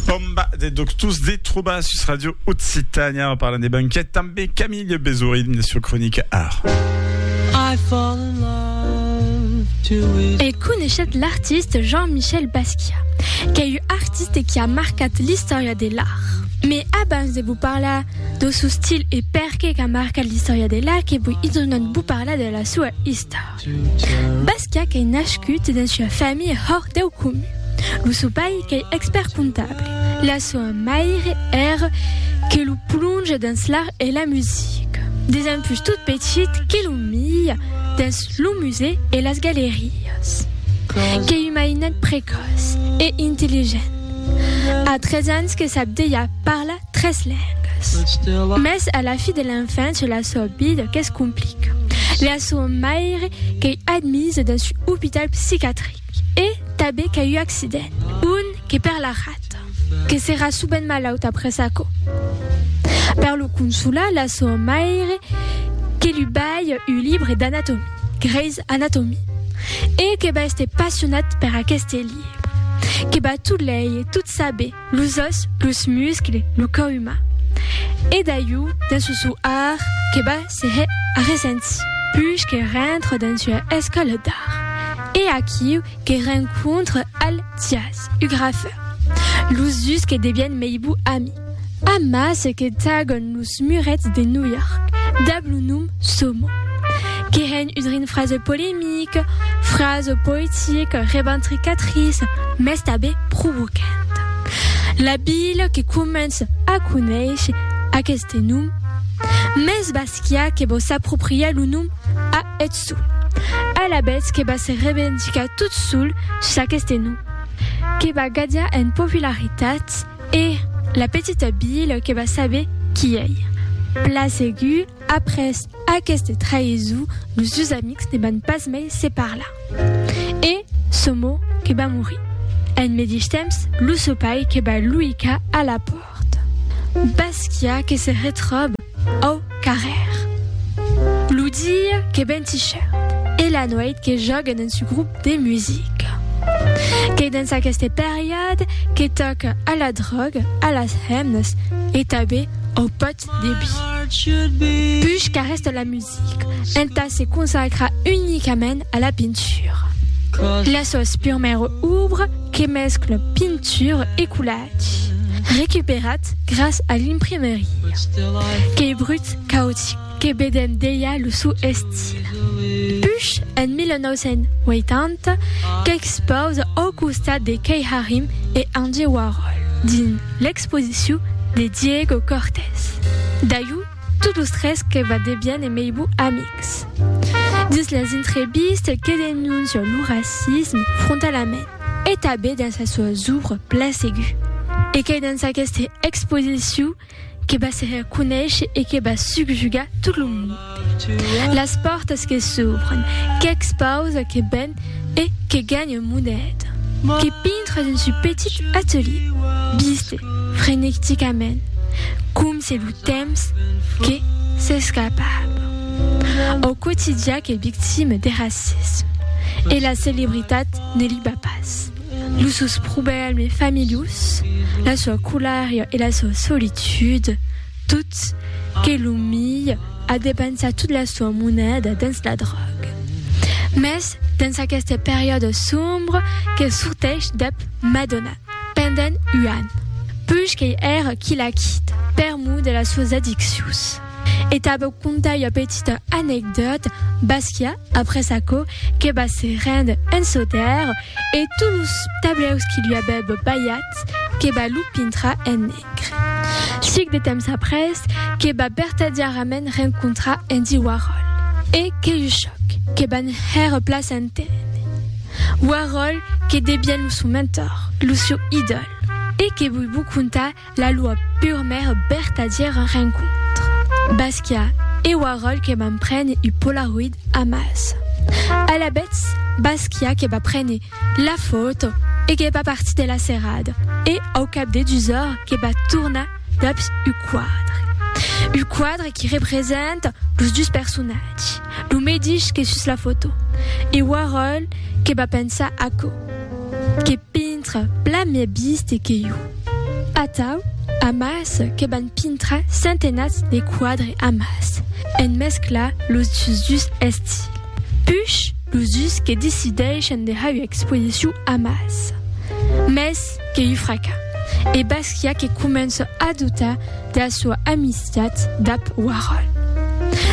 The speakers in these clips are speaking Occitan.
Bomba de doctors de trobar sus Radio Occitània. En parlant de banquet, també Camille Bezorin, la sua cronica Art. E coneishet l'artiste Jean-Michel Basquiat, qu'ei un artiste qui a marcat l'istòria de l'art. Mes abans de vos parlar do sou stil e perqué qu'a marcat l'istòria de l'art que voi idonat vos parlar de la sua istor. Basca qu'ei nascut dens ua familha hòrt deu comun. Lo sò pair qu'ei expèrt comptable. La soa maire ère que lo plonge dens l'art e la musica. Desempús tot petit que lo mia dens lo musèu e las galerias. Qu'ei un mainet precòç e intelligent. A tres ans que sap dejà parlar tres lengas. Mas a la fi de l'enfància la sua vida que's complica. La sua maire qu'ei admisa dins un opital psicatric e tanben qu'a un accident, un que per la rata, que serà subent malaut après aquò. Per lo consolar, la sua maire que lu balha un libre d'anatomia, Grey's Anatomy, e que va èster passionat per aqueste libre, que va tot leir, tot saber, los òs, los muscles, lo cò umà. E d'aiu, dins lo sou art, que va se hè arresentir. Puish que rentre dins ua escòla d'art, e aquiu que rencontre al Thias, u grafeur. Los dus que devièn mei bou ami. Amas que tagon los. Los murets de New York dab lo nom Somo, que hèn un rin fraze polemic, fraze poetic, reventricatriç, mès tabé provocant. La vila que començ a conéisher aqueste nom, mès Basquiat que vò s'apropriar lo nom a eth sol, alavetz que va se revendicar tot sol s'aqueste nom, que va gadiar en popularitat, E la petita Bill que va saber qui ei. Pla segur, après aqueste traïson, los dus amics ne van pas mai se parlar. E Somo que va morir. En medish temps, lo sopai que va luicar a la pòrta. Basquiat que se retròba. Au carrèr. Lo dia qu'es ben tichèrt e la nuèit que jòguen en su grop de musica. Qu'es dens aqueste periòde que tòca a la dròga, a las hemnas e tanben au pòt de bi. Puish qu'arrèsta la musica entà se consacrar unicament a la pintura. Las sòus purmèra obra que mescla pintura e coulèr. Qui, recuperat gras a l'imprimeria, qu'ei brut, caotic, que bedèm delha lo suu estil. Push, en 1980, qu'expausa au costat de Kay Harim e Andy Warhol dins l'exposiciu de Diego Cortez. Dayú, tot los tres que va debièn e meibu amics. Dins las intrevistes que denoncia lo racisme frontalament. e tanben dins las suas òbras plan segur. E qu'ei dins aqueste exposicion que va se hèr conéisher e que va subjugar tot lo monde. Las pòrtas que s'òbren, qu'expausa, que ven e que ganha moneda, que pintra dins su petit atelier, viste frenecticament, com se lo temps que s'escapava. Au quotidià qu'ei victime de racisme e la celebritat Ne liba pas. Los sòus problèmes familhós, la soa colària e la soa solitud, tot, que lo milh a depensat tot la soa moneda dens la dròga. Mès dens aqueste periòde sombre que sorteish dab Madonna pendent un an, puish qu'ei èra quilhaquit per mor de las soas addiccions. E tà vos contar ua petita anecdòta, Basquiat, après aquò, que va se rendre en Sautèrre, e tots los tablèus qui lui avèb balhats, que va lo pintrar en negre. Sic de temps après, que va vertadièrament rencontrar Andy Warhol, e que un chòc, que van hèr plaç en tene. Warhol, que devièn lo sou mentor, lo sieu idòl. E que voi vos contar La lua pur mèr bertadièr rencontre. Basquiat, e ua ròl que vam prene u polaroid amàs. Alabèths, Basquiat que va prene la fòto e que va partir de la serrada, e au cap de dus ors que va tornar daps u quadre. U quadre qui representa los dus personatges, lo medish que sus la fòto, e Warhol que va pensar aquò, que pintra plan mès biste que jo. Atau, amàs, que van pintra centenats de quadre amàs, en mesclar los dus estils. Puish, los dus que decidèishen de har ua exposicion amàs. Mès que ua fraca. E Basquiat que comença a doutar de la soa amistat dab Warhol.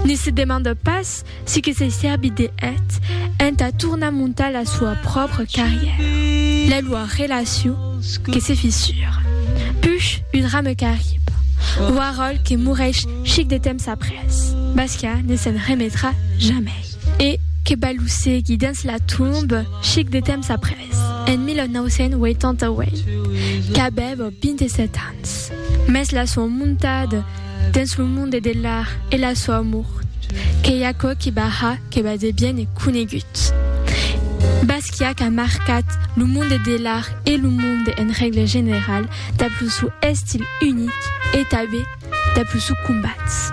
Ne se demanda pas Si que se sèrbit de eth entà tornar montar la soa pròpra carrièra. La loa relacion que se fissura. Push un rame qu'arriba. Ua ròl que moreish chic de temps après. Basca ne se'n remetrà jamei. E que balocegui dens la tomba chic de temps après. En 1988, qu'avèva 27 ans. Mès la sua montada dens lo monde de l'art e la sua mort, qu'ei aquò que Barra que bas de bien e conegut. Basquiat a marcat lo monde de l'art e lo monde en règle general dab lo sou estil unic e tabé dab lo sou combats.